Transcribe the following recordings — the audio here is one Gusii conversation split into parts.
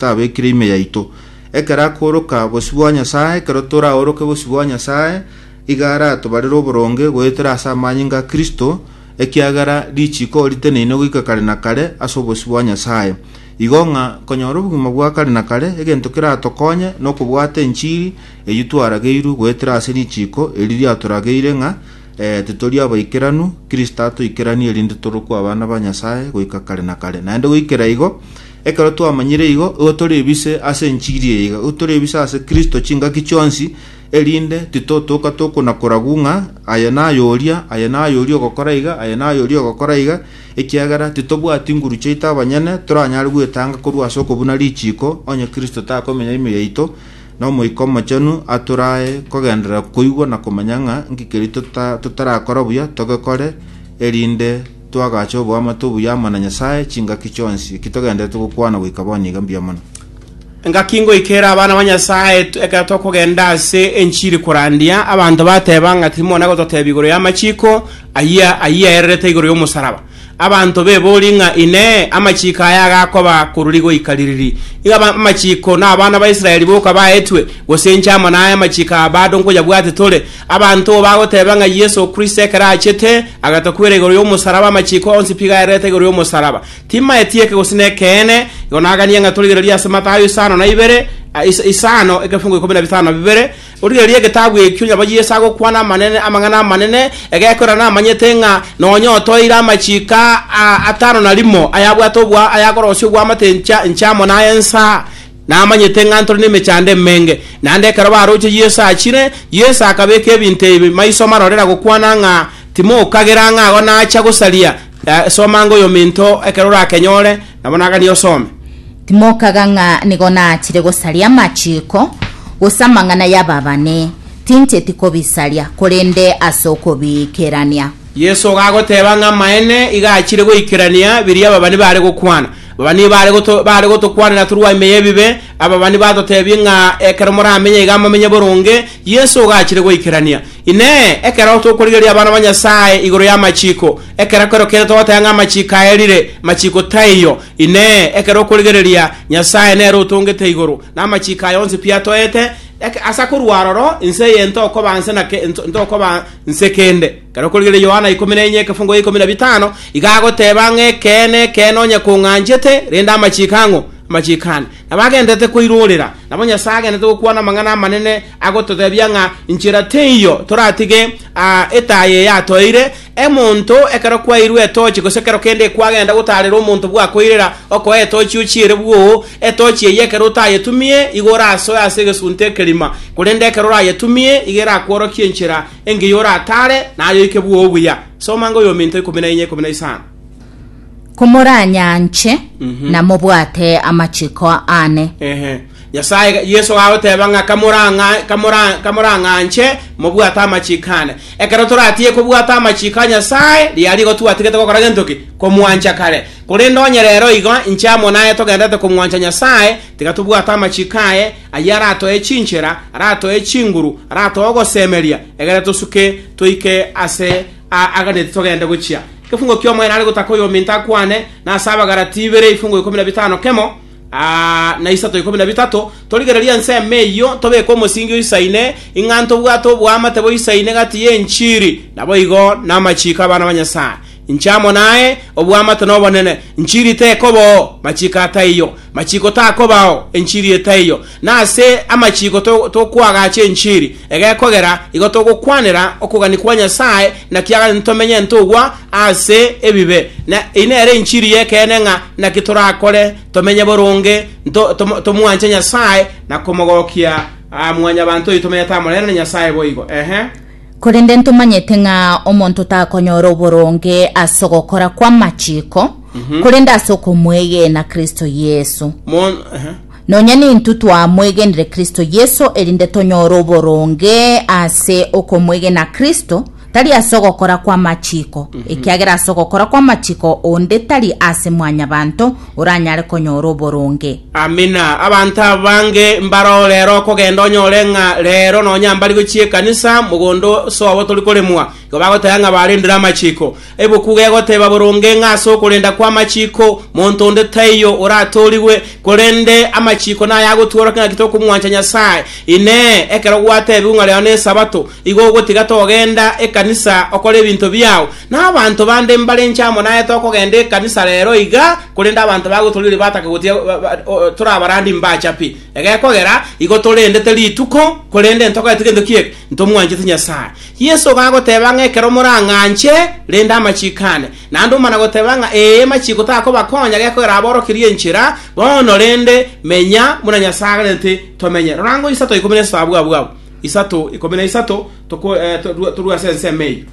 tabekire ime yaito. Ekero akooroka bosio bwa Nyasae, ekero toraoroke bosio bwa Nyasae, iga aratobarere oboronge goetera ase amanyinga a Kristo, ekiagera richiiko oriteneine goika kare na kare ase obosio bwa Nyasae. Igo ng'a konyora obogima bwa kare na kare, egento keratokonye nokobwata enchiri eyio twarageirwe goetera ase richiiko eri riatorageire ng'a eh, titori abaikeranu, Kristo atoikeranie erinde torokwe abana ba Nyasae goika kare na kare. Naende goikera igo, Ekero twamanyire igo, igo tore bise ase enchiri eye, iga igo tore bise ase Kristo chingaki chionsi, erinde titotoka tokonakoragu ng'a aye naye oria, aye naye oria ogokora iga, aye naye oria ogokora iga, ekiagera titobwati nguru chiaito abanyene, toranyare gwetanga korwa ase okobuna richiiko, onye Kristo takomenya ime yaito, na Omoika Omochenu atorae kogenderera koigwa na komanya ng'a nki keria tota- totarakora buya, togekore, erinde Twagache oboamate obuya amo na Nyasae chingaki chionsi, eki togenderete gokwana goika bono iga mbuya mono. Engaki ngoika ere abana ba Nyasae ekero tokogenda ase enchiri korandia, abanto bateba ng'a timona gototebia igoro y'amachiko ayia ayio aererete igoro y'omosaraba. Abanto bebori ng'a Inee! Amachiko aya agakoba koruri goika ririri? Iga aba amachiko na abana ba Israeli boka baetwe, gose inche amo naye amachiko aya bado nkoyabwate tore? Abanto bagoteeba ng'a Yeso o Kristo ekero achete, agatokwera igoro y'omosaraba, amachiko onsi piga aererete igoro y'omosaraba. Timaeti eke gose nekeene, igo naganie ng'a torigererie ase Matayo isano na ibere, a, is, isano, ekefungo ikomi na bitano na bibere, origererie egetabu ekio, nyabo Yeso agokwana amanene, amang'ana amanene, egekorera namanyete ng'a nonya otoeire amachiko a, a, atano na rimo ayabwate obwa, ayakorosia obwamate encha, enchamo na ensa, Namanyete ng'a ntore nemechando emenge. Naende ekero baroche Yeso achire, Yeso akabeka ebinto ebi maiso marorera gokwana ng'a, Timokagera ng'a ago nacha gosaria. Soma ng'a oyominto ekero orakenyore, nabo naganie osome. Timokaga ng'a nigo naachire gosaria amachiiko, gose amang'ana y'ababani, tincheti kobisaria, korende ase okobiikerania. Yeso iga agoteba ng'a amaene iga achire goikerania biria ababani baare gokwana. Babani baare goto- baare gotokwanera torwa ime y'ebibe, ababani batoteebie ng'a ekero moramenye iga momenye boronge, Yeso ogachire goikerania. Inee! Ekero tokorigereria abana ba Nyasae igoro y'amachiko, ekero kerokende togoteba ng'a amachiko aerire? Machiko taiyo. Inee! Ekero okorigereria Nyasae nere otongete igoro, na amachiko aya onsi pi atoete? Eke- Asa korwa aroro, inse eye ntokoba nse na ke- nto- ntokoba nse kende. Ekero kwarigereire Yohana ikomi na enye ekefungo gia ikomi na bitano, iga agoteba ng'a ekeene, ekeene, onye kong'anchete, rende amachiiko ang'o? Amachiiko ane. Nabo agenderete koirorera, nabo Nyasae agenderete gokwana amang'ana amanene, agototebia ng'a inchera teiyo toratige etaya eye atoeire omonto, ekero kwairwe etochi, gose ekero kende kwagenda gotaarera omonto bwakoirera, okoe etochi ochiere bwoo, etochi eyio ekero otayetumie, igo orasoe ase egesunte ekerima, korende ekero orayetumie, igo erakworokie enchera. Engiya oratare nayo ike bwo obuya. Soma ng'a oyominto ikomi na inya ikomi na isano. Komoranyanche na mobwate amachiko aane. Ehe. Nyasaye, ga- Yeso gagoteba ng'a kamorang'a- kamora- kamorang'anche mobwate amachiko ane. Ekero toratige kobwata amachiko a Nyasaye, riria rigo twatigete gokora gento ki? Komwancha kare. Korende onye rero igo inche amo naye togendererete komwancha Nyasaye, tiga tobwate amachiko aye, Ayio aratoe chinchera, aratoe chinguru, aratoe ogosemeria, egere tosuke toike ase aa aganeti togende gochia. Ekefungo ki'omoerio nare gotaka oyominto akwane, na ase Abagalatia ibere ebifungo ikomi na bitano kemo aa na isato ikomi na bitato, torigererie ensemo eyio, tobeke omosingi oisaine, ing'a ntobwate oboamate boisaine gati y'enchiri, naboigo namachiiko 'abana ba Nyasae. Inche amo naye, obw'amato nobonene, enchiri tekobao, machiko ataiyo. Machiko takobao, enchiri etaiyo. Na ase amachiko tokwagacha enchiri, egekogera igo togokwanera okogania kwa Nyasae, naki agachete ntomenye ntogwa ase ebibe. Na eye nere enchiri y'ekeene ng'a naki torakore tomenye boronge, tomwanche Nyasae, na komogokia mwanyabanto oito tomenyete amo nere na Nyasae boigo. Ehe. Korende ntomanyete ng'a omonto takonyora oboronge ase ogokora kw'amachiko, korende ase okomwegena Kristo Yeso. Mon, aha. Nonya nintwe twamwegenire Kristo Yeso erinde tonyore oboronge ase okomwegena Kristo, tari ase ogokora kw'amachiko, ekiagera ase ogokora kw'amachiko onde tari ase mwanyabanto, oranyare konyora oboronge. Amina. Abanto abange mbarao rero okogenda onyore ng'a rero nonya mbari gochia ekanisa, mogondo sobo tori koremwa, igo bagoteba ng'a barendire amachiko. Ebuku gegoteba boronge ng'a ase okorenda kw'amachiko monto onde taiyo oratoorigwe, korende amachiko naya agotworokia ng'aki tokomwancha Nyasae. Inee! Ekero gwatebigwe ng'a rero n'Esabato, igo ogotiga togenda ekanisa okore ebinto biao? Nabaanto bande mbarenche amo naye tokogenda ekanisa rero iga, korende abanto ba gotorioria batake gotiga torabarandie mbacha pi. Egekogera igo torendete rituko, korende ntogete gento ki'eke, ntomwanchete Nyasae. Yeso iga agoteba ng'a ekero morang'anche, rende amachiko ane. Naende omana goteba ng'a ee amachiko takobakonya, gekogera aborokerie enchera bono rende menya buna Nyasae aganete tomenye. Rora ngoisato ikomi nesato abwabwabo. Isato, ikomi na isato. Toko- eh, to- torue ase ensemo eyio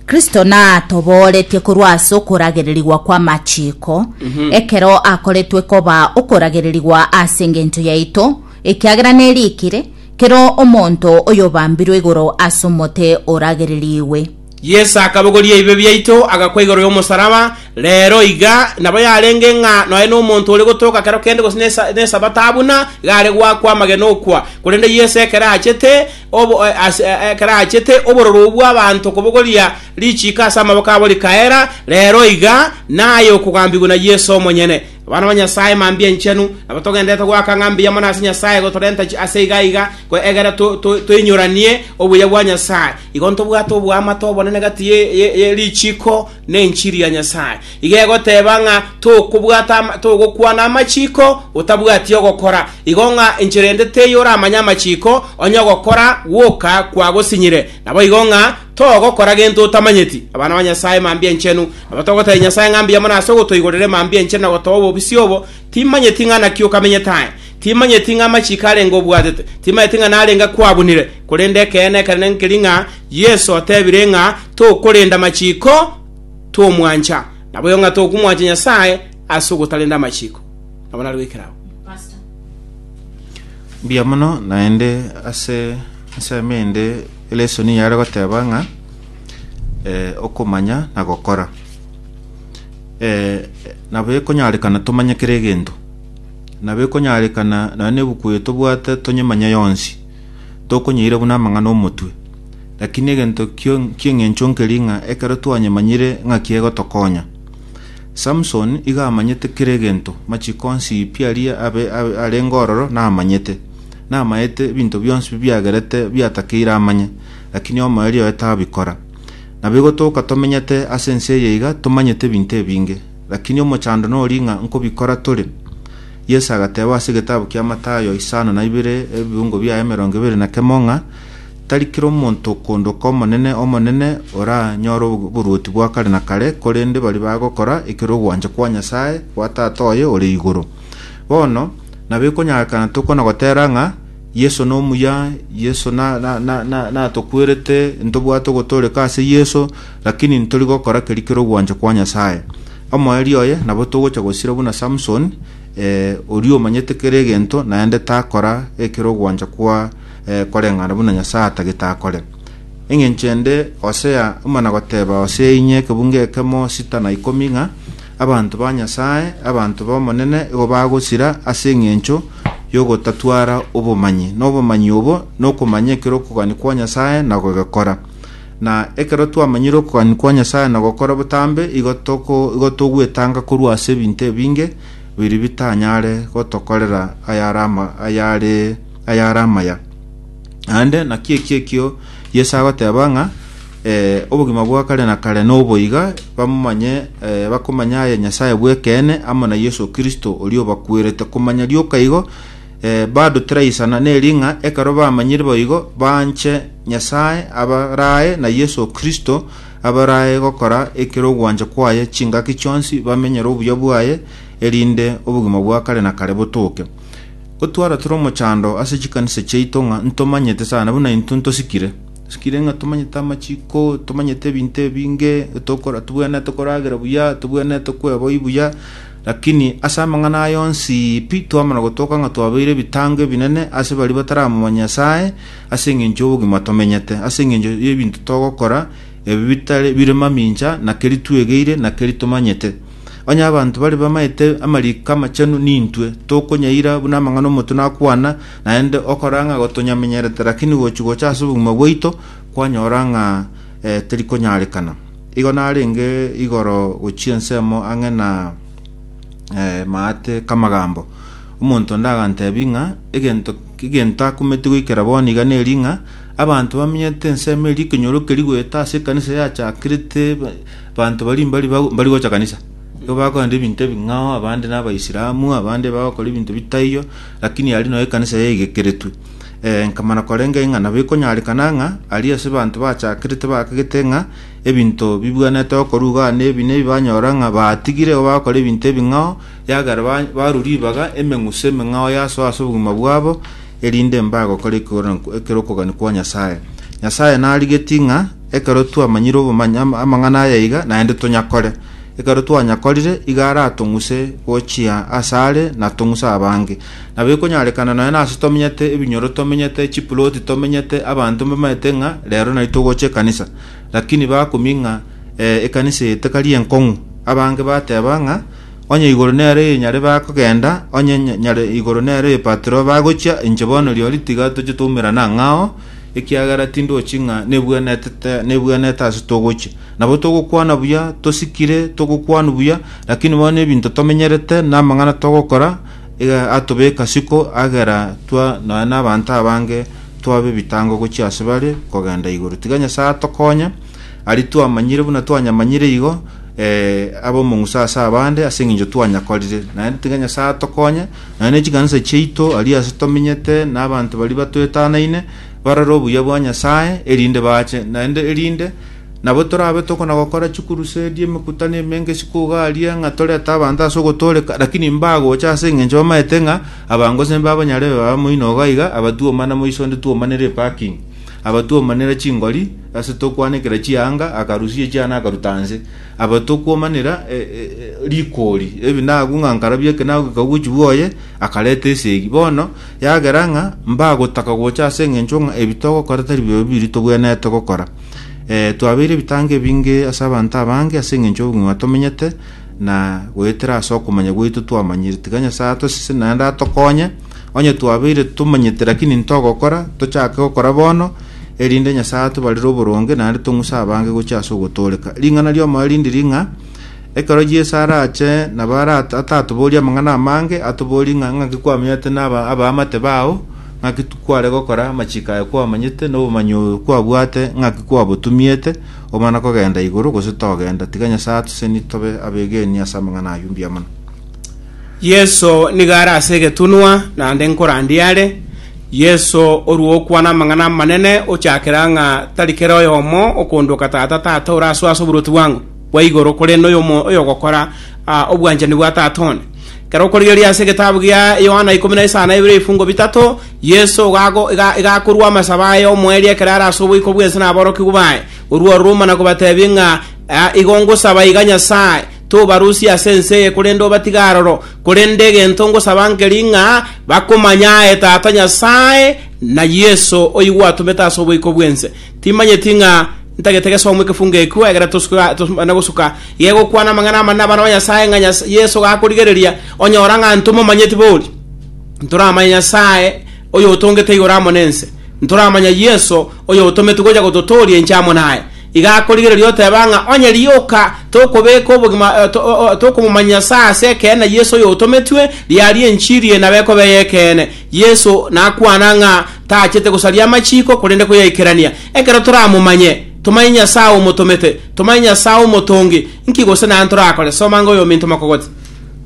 Kristo natobooretie korwa ase okoragererigwa kw'amachiko, ekero akoretwe koba okoragererigwa ase engencho yaito, ekiagera nerikire, kera omonto oyobambirwe igoro ase omote oragererigwe. Yeso akabogoria ebibe biaito agakwa igoro y'omosaraba rero iga nabo yarenge ng'a noe nomonto ore gotoka kero kende gose nesa- nesabato abuna iga are goakwa amagena okwa korende Yeso ekero achete Obo, eh, ase, eh, ekero aachete obororo obwo abanto kobogoria richiiko ase amaboko abo rikaera, rero iga naye okogambigwa na Yeso omonyene. Abana ba Nyasae mambia enchenu, nabo togenderete goaka ng'a mbuya mono ase Nyasae gotorenta chi- ase iga iga, ko egere to- to- toinyoranie obuya bwa Nyasae. Igo ntobwate oboamate obonene gati ye- ye- ye richiiko Nenchiri ya Nyasae iga egoteba ng'a tokobwata togokwana amachiko otabwati ogokora, igo ng'a enchera ende teiyo oramanye amachiko, onye ogokora gwoka kwagosinyire, naboigo ng'a togokora gento otamanyeti. Abana ba Nyasae mambia enchenu, nabo togotebia Nyasae ng'a mbuya mono ase ogotoigorera emambia enchenu na gotoa obobisi obo, timanyeti ng'a naki okamenyete aye. Timanyeti ng'a amachiko arenge obwatete, timanyeti ng'a narenge akwabunire, korende ekeene ekenene nkeri ng'a Yeso otebire ng'a tokorenda amachiko twomwancha, naboigo ng'a tokomwancha Nyasae ase ogotarenda amachiko. Nabo naroikera agwo. Mbuya mono, naende ase ensemo ende elesoni yare goteba ng'a eh, okomanya na gokora. Eh, nabo ekonyarekana tomanye kera egento. na bekonyarekana naende nebuku eye tobwate tonyemanya yonsi, tokonyeira buna amang'ana 'omotwe. Lakini egento ki'engencho nkeri ng'a ekero twanyemanyire ng'aki egotokonya. Samson iga amanyete kera egento, machiko onsi pi aria abe arenge ororo namanyete. Namaete ebinto bionsi bi biagerete biatakeire amanye, lakini omoerio oye tabikora. Naboigo toka tomenyete ase ense eye iga tomanyete ebinto ebinge. Lakini omochando noria ng'a nkobikora tore? Yeso agateeba ase egetabu kia Matayo isano na ibere ebiungo biaye emerongo ebere na kemo ng'a tari kera omonto okondoka Omonene, Omonene, oranyore oboruoti bwa kare na kare, korende baria bagokora ekero ogwancha kwa Nyasae, kwa Tata oye ore igoro. Bono, nabo ekonyakana tokwana gotera ng'a Yeso nomuya, Yeso natokwerete, ntobwate ogotooreka ase Yeso, lakini ntori gokora keria kere ogwancha kwa Nyasae. Omoerio oye nabo togocha gosira buna Samson, oria omanyete kera egento, naende takora ekero ogwancha kwa koreng'ana buna Nyasae atagete akore. Engencho ende Hosea omana goteba Hosea inye ekebungo ekemo sita na ikomi ng'a, Abanto ba Nyasae, abanto b'Omonene, igo bagosira ase engencho y'ogotatwara obomanyi, na obomanyi obo nokomanya ekero okogania kwa Nyasae na gogekora. Na ekero twamanyire okogania kwa Nyasae na gokora botambe, igo toko igo togwetanga korwa ase ebinto ebinge biri bitanyare gotokorera ayare ama ayare ayare amaya. Naende naki eki ekio Yeso agoteba ng'a eh, obogima bwa kare na kare noboiga bamomanye eh, bakomanya aye Nyasae bw'ekeene amo na Yeso Kristo oria obakwerete. Komanya rioka igo eh, bado tiraisana neri ng'a ekero bamanyire boigo banche Nyasae abarae na Yeso Kristo abarae gokora ekero ogwancha kwaye chingaki chionsi bamenyere obuya bwaye erinde obogima bwa kare na kare botoke. Gotwara tore omochando ase chikanisa chiaito ng'a ntomanyete sana buna intwe ntosikire. Tosikire ng'a tomanyete amachiko, tomanyete ebinto ebinge, tokora tobwenerete koragera buya, tobwenerete kweboi buya, lakini ase amang'ana aya onsi pi twamana gotoka ng'a twabeire ebitango ebinene ase baria bataramomanya Nyasae ase eng'encho y'obogima tomenyete, ase eng'encho y'ebinto togokora ebi bitari bire mamincha na keri twegeire na keri tomanyete. Onye abanto baria bamaete amariko amachenu nintwe, tokonyaira buna amang'ana omotu nakwana, naende okora ng'a gotonyamenyerete, lakini gochia gocha ase obogima bwaito kwanyora ng'a eh, terikonyarekana. Igo narenge igoro gochia ensemo ang'e na eh, maate kamagambo. Omonto onde agantebi ng'a egento egento akumeti goikera bono iga neri ng'a abanto bamenyete ensemo eri ekenyoro keri goeta ase ekanisa yachakirete Abanto baria mbari ba- mbari gocha kanisa, nigo bakorenta ebinto ebing'ao, abande n'Abaisilamu, abande bagokora ebinto bitaiyo, lakini aria nonya ekanisa yaigekeretwe. Eh, nkamana korenge ng'a nabo ekonyarekana ng'a aria ase abanto bachakerete bakagete ng'a ebinto bibwanete okorwa iga na ebi na ebi banyora ng'a batigire igo bagokora ebinto ebing'ao, yagera ba- barwa ribaga emeng'uso emeng'ao yasoa ase obogima bwabo, erinde mbagokora ekeoro- ekerokogania kwa Nyasae. Nyasae narigetie ng'a. Ekero twamanyire obomanya amang'ana aya iga, naende tonyakore. Ekero twanyakorire, igo aratong'use gochia ase are na tong'use abange. Nabo ekonyarekana nonya nase tomenyete, ebinyoro tomenyete, chipuloti tomenyete, abanto mbamaete ng'a rero nari togocha ekanisa. Lakini bakumia ng'a eh, ekanisa eye tekari enkong'u. Abange bateba ng'a onye igoro nero eye nyare bakogenda, onye nya- nyare igoro nero eye patro bagochia, inche bono riori tiga toche twaumerana ang'ao, ekiagera tindochi ng'a nebwenerete nebwenerete ase togochia. Nabo togokwana buya, tosikire, togokwanu buya, lakini bono nebinto tomenyerete, namang'ana togokora, iga atobeka siko agera twa nonya nabanto abange twabe ebitango gochia ase bare kogenda igoro. Tiga Nyasaye atokonye, ari twamanyire buna twanyamanyire igo, eh, abe omong'uso ase abande ase eng'encho twanyakorire. Naende tiga Nyasaye atokonye, Naende nechikanisa chiaito aria ase tomenyete na abanto baria batwetanaine barore obuya bwa Nyasae, erinde baache naende, erinde nabo torabe tokona-gokora chikurusedi, emekutano emenge, sikuga aria ng'a torete abanto ase ogotooreka, lakini mbagocha ase engencho bamaete ng'a abango sembe abanyarebe babe moino iga iga, abatuomana moiso onde tuomanere eparking, abatuomanera chingori ase tokwanekera chianga, akarusia echiana akaruta nse. Aba tokomanera rikori, ebi nagwo ng'a nkarabia eke nagwo eke ogochi gwoye, akareta esegi. Bono yagera ng'a mbagotaka gocha ase engencho ng'a ebi togokora tari bibe biria togwenerete gokora. Eh, twabeire ebitango ebinge ase abanto abange ase engencho y'obong'ina tomenyete, na goetera ase okomanya gwaito twamanyire. Tiga Nyasae atosese naende atokonye, Onye twabeire totomanyete lakini ntogokora, tochake gokora bono, erinde Nyasae atobarere oboronge naende tong'use abange gochia ase ogotooreka. Ring'ana ri'omoyo rinde riri ng'a, ekero Yeso arache nabo ara- atatoborie amang'ana amange, atoborie ng'a ng'aki kwamenyete naba- abaamate bao, ng'aki t- kware gokora, amachiko aye kwamanyete, na obomanyi oyo kwabwate ng'aki kwabotumiete, omana kogenda igoro gose togenda. Tiga Nyasae atoseni tobe abegeni ase amang'ana ayio mbuya mono. Yeso nigo are ase egetunwa, naende nkorandia are. Yeso orua okwana amang'ana amanene, ochakera ng'a tari kera oyomo okondoka Tata, Tata ore aso ase oboruoti bwango bwa igoro, korende oyomo oyogokora ah, obwanchani bwa Tata one. Ekero okorigereria ase egetabu gia Yohana ikomi na isano na ibere ebifungo bitato, Yeso gago ga- gakorua amasabo aye omoerio ekero are ase oboiko bw'ense na aborokigwa baye, orua ororo omana kobatebia ng'a, "Ah, igo ngosaba iga Nyasae, Tobarusie ase ense eye, korende obatige aroro. Korende egento ngosaba nkeri ng'a bakomanya aye Tata Nyasae, na Yeso, oyio gwatomete ase oboiko bw'ense. Timanyeti ng'a ntagete gesoomwa ekefungo ekio, egere tosibane gosuka gegokwana amang'ana amanene abana ba Nyasae ng'a Yeso gakorigereria, onyora ng'a ntomomanyeti bori. Ntoramanya Nyasae, oyotongete igoro amo nense. Ntoramanya Yeso, Oyotometwe gocha gototooria inche amo naye, iga akorigereria oteba ng'a onye rioka tokobeka obogima tokomomanyia ase ase ekeene Yeso oyotometwe, riaria enchiri eye nabo ekoba ey'ekeene. Yeso nakwana ng'a tachete gosaria amachiko, korende koyaikerania. Ekero toramomanye, tomanye Nyasae omotomete, tomanye Nyasae omotongi, nki gose naye ntorakore? Soma ng'a oyominto mokogote.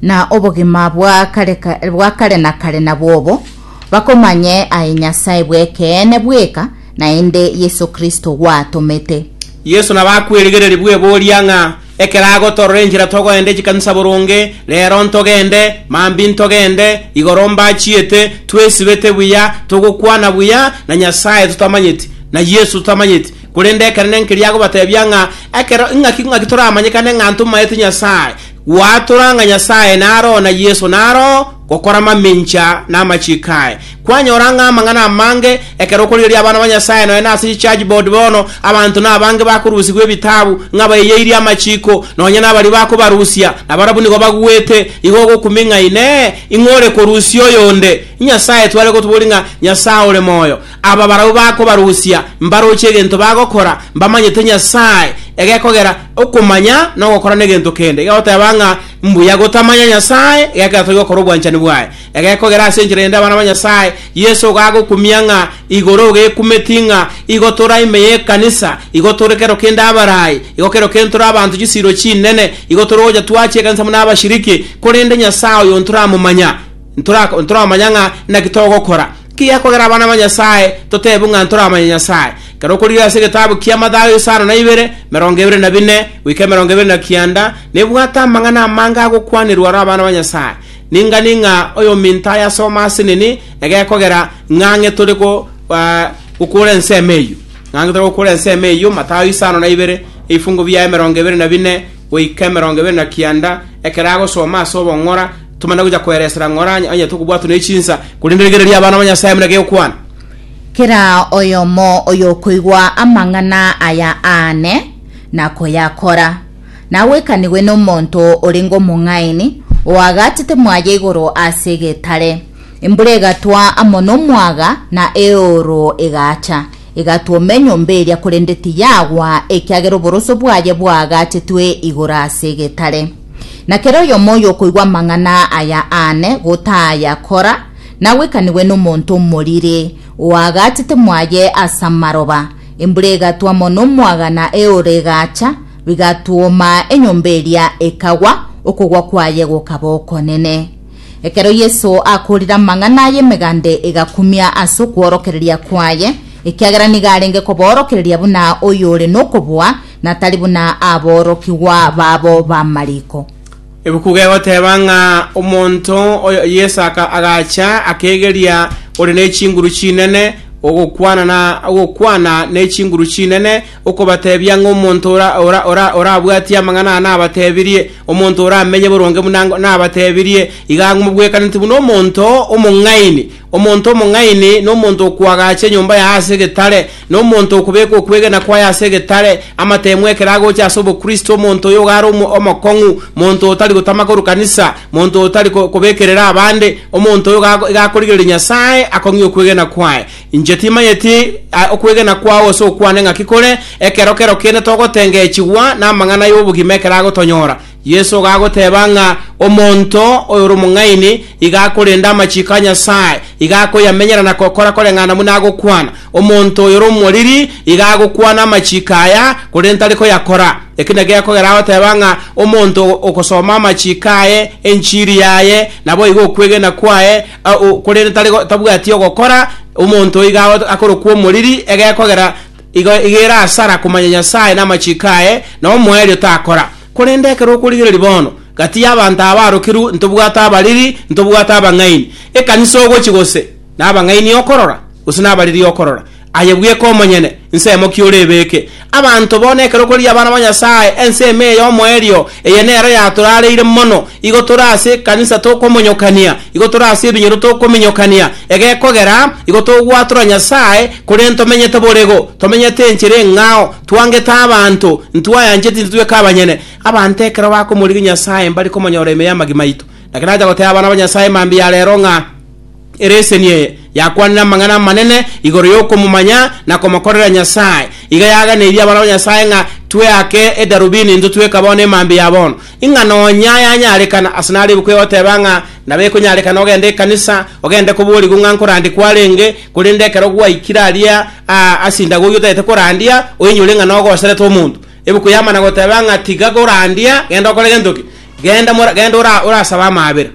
Na obogima bwa kare na kare nabwo obo, bakomanye aye Nyasae bw'ekeene bweka, naende Yeso Kristo gwatomete. Yeso nabo akwerigereria bweboria ng'a, Ekero agotoorora enchera togoenda chikanisa boronge, reero ntogende, mambia intogende, igoro mbachiete, twesibete buya, togokwana buya, na Nyasae totamanyeti, na Yeso totamanyeti. Korende ekenene nkeria agobatebia ng'a, Ekero ing'aki ng'aki toramanyekane ng'a ntomaete Nyasae, gwatora ng'a Nyasae naro, na Yeso naro. Gokora mamencha namachiiko aye. Kwanyora ng'a amang'ana amange ekero okorigereria abana ba Nyasae nonya nase chichurch board bono, abanto nabange bakorusigwa ebitabu ng'a baiyeirie amachiiko, nonya nabaria bakobarusia, nabarabwo nigo baguete. Igo ogokumi ng'a Inee! Ing'o ore korusia oyonde? Inyasae tware gotoboria ng'a Nyasae ore moyo. Aba barabwo bakobarusia mbaroche egento bagokora, mbamanyete Nyasae egekogera okomanya nogokora negento kende. Igagoteba ng'a Mbuya gotamanya Nyasae gekeratogigwa okore obwanchani bwaye. Egekogera ase enchera eyende abana ba Nyasae, Yeso igo agokumia ng'a igoro iga ekumeti ng'a igo tore aime y'ekanisa, igo tore kero kende abarai, igo kero kende tore abanto chisiiro chinene, igo tore gocha twachia ekanisa buna abashiriki, korende Nyasae oyo ntoramomanya, ntora ntoramanya ng'a naki togokora. Ki gekogera abana ba Nyasae totebu ng'a ntoramanya Nyasae? Kero okorigereria ase egetabu kia Mathayo isano na ibere, emerongo ebere na bine goika emerongo ebere na kianda, Nebwate amang'ana amange agokwanerwa ore abana ba Nyasae. Ning'ani ng'a oyominto ayasome ase nini egekogera ng'ang'e tore gokora ensemo eyio. Ng'ang'e tore gokora ensemo eyio, Mathayo isano na ibere, ebifungo bia emerongo ebere na bine goika emerongo ebere na kianda. Ekero agosoma ase obong'ora, tomana gocha koeresera ng'ora onye tokobwatwa ne chinsa, korende rigereria abana ba Nyasae buna gekwana. Kera oyomo oyokoigwa amang'ana aya aane, na koyakora. nagwekanigwe nomonto orenge omong'aini, oagatete mwaye igoro ase egetare. Embura egatwa amo nomwaga, na eooro egaacha, egatwoma enyomba eria, korende tiyagwa, ekiagera oboroso bwaye bwaagatetwe igoro ase egetare. Na kera oyomo oyokoigwa amang'ana aya aane, gotayakora, nagwekanigwe nomonto omoriri, oagatete mwaye ase amaroba, Embura egatwa mono mwagana eora egaacha, bigatwoma enyomba eria ekagwa, okogwa kwaye gokaba okonene. Ekero Yeso akoorire amang'ana aya emeganda egakumia ase okworokereria kwaye, ekiagera nigo arenge koboorokereria buna oyore nokoboa, na tari buna aborokigwa babo b'amariko. Ebuku gegoteeba ng'a omonto oyo Yeso aka- agacha akeegeria ore ne chinguru chinene, ogokwana na ogokwana ne chinguru chinene, okobateebia ng'a omonto ora, ora, ora, orabwatie amang'ana aya nabateebirie, omonto oramenye boronge buna ngo- nabateebirie, iga mobwekaneti buna omonto omong'aini. Omonto omong'aini nomonto okoagacha enyomba yaye ase egetare, Nomonto okobeka okwegena kwaye ase egetare, amateemwa ekero agocha ase obokristo, omonto oyo iga are omokong'u, monto otari gotama korwa kanisa, monto otari kobekerera abande, omonto oyo iga akorigereria Nyasae, akong'ie okwegena kwaye. Inche timanyeti okwegena kwao ase okwane ng'aki kore, ekero kero kende togotengeechigwa namang'ana y'obogima ekero agotonyora. Yeso gagoteba ng'a omonto oyore omong'aini iga akorenda amachiko a Nyasae, iga akoyamenyera na gokora koreng'ana buna agokwana. Omonto oyore omoriri iga agokwana amachiko aya, korende tari koyakora. Eki nakio gekogera agoteba ng'a omonto ogosoma amachiko aye, enchiri yaye, naboigo okwegena kwaye, korende tari tabwati ogokora, omonto oyio iga akorokwa omoriri, egekogera Igo egere asara komanya Nyasae na amachiko aye, na omoerio takora. Korende ekero okorigereria bono, gati y'abanto abaarokirwe ntobwate abariri, ntobwate abang'aini. Ekanisa ogochia gose? Nabang'aini okorora? Gose nabariri okorora? Aye bweka omonyene, nsemo ki orebeke? Abanto bono ekero okorigereria abana ba Nyasae, ensemo eye y'omoerio, eye nero yatorareire mono. Igo tore ase ekanisa tokomonyokania, igo tore ase ebinyoro tokominyokania, egekogera igo togwatora Nyasae, Korende tomenyete borego, tomenyete enchera eng'ao, twangete abanto, ntwayancheti, ntitweka abanyene. Abanto ekero bakomorigia Nyasae mbare komonyora ime y'amagima aito. Naki nacha goteba abana ba Nyasae mambia ya reero ng'a ereseni eye yakwanire amang'ana amanene igoro y'okomomanya na komokorera Nyasae. Iga yaaganeiri abana ba Nyasae ng'a tweake edarubini into tweka bono emambia ya bono. Ing'a nonya yanyarekana, ase narebekwa egoteba ng'a nabo ekonyarekana ogende ekanisa, ogende koborigwa ng'a nkorandikwa arenge, Korende ekero gwaikire aria aa ase indagogi otagete korandia, oinyore ng'a nogoserete omonto. Ebuku yamana goteba ng'a tiga korandia, genda okore gento ki? Genda mora- genda ora- orasabe amaabera.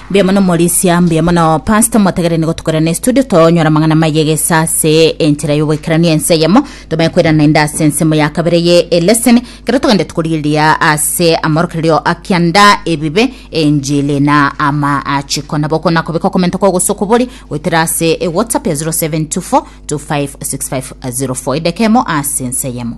Mbuya mono Morisia, mbuya mono Pastor motegerene gotukorana estudio tonyora amang'ana maiga egesa ase enchera y'ogoikerania ense eyemo tomanye kwerana ende ase ensemo ya kabere ye eleseni Ekero togende tokorigereria ase amorokererio a kianda, ebibe, enchili, na amaachiko, nabo okona kobeka okomenta kwao gose okobori goetera ase eWhatsApp ya 0724 256504 edeka emo ase ensa eyemo.